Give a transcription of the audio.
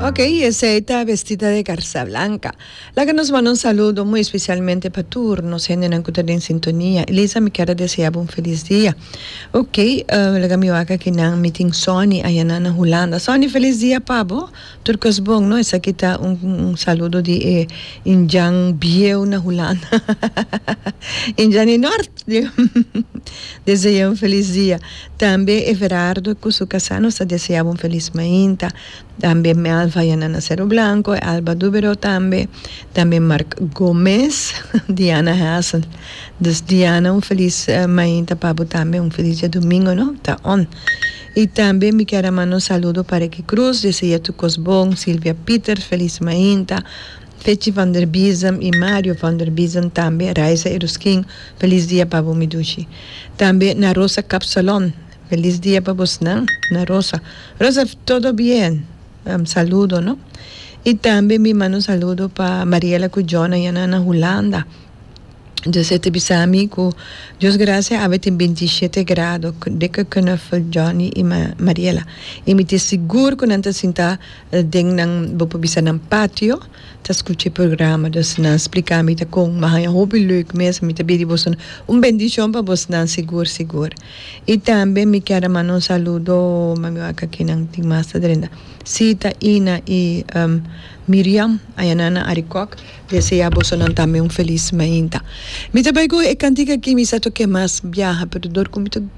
Ok, esey ta vestida de garza blanca. Laga nos manda un saludo muy especialmente pa tur nos hendenan cu ta den sintonia. Elisa, mi kier a deseabu un feliz dia. Ok, uh, laga mi wak aki nan, mi tin Sonny ayanan na Hulanda. Sonny, feliz dia pa bo. Tur cos bon, no? Esaki ta un, un saludo di e Indian bieu na Hulanda. Indian di Nort, digo. Deseaye un feliz dia. Tambe Everardo cu su casa nos ta desea bo un feliz mainta, tambe Melva y Anana Cero Blanco y Alba Dubero tambe, tambe Marc Gomez, Diana Hassel. Dus Diana un feliz mainta pa bo tambe, un feliz dia domingo no ta on. Y tambe mi kier a manda un saludo pa Ricky Cruz, desea tu cos bon, Silvia Pieter feliz mainta, Fetji van der Biesem y Mario van der Biesem tambe Raisa Eruskin Feliz dia pa bo mi dushi tambe na Rosa Kapsalon Feliz dia pa bos nan na Rosa Rosa todo bien saludo no y tambe mi manda un saludo pa Mariela cu Jona ya nan na Hulanda Jose ta bisa mi cu Dios gracia awe tin binti shete grado Dikke Knuffel Johnny y Mariela y mi tin sigur cu nan ta sinta Den nan bo por bisa nan patio ta scucha e programa dus nan splica ami ta con mi a haya hopi leuk mes ami ta bidi boso nan un bendicion pa bos nan sigur sigur y tambe mi kier a manda un saludo mami wak aki nan tin mas ta drenta Sita Ina y Miriam aya nan na Arikok desea boso nan tambe un feliz mainta mi ta bay cu e cantica aki mi sa toke mas biaha pero dor cu mi ta.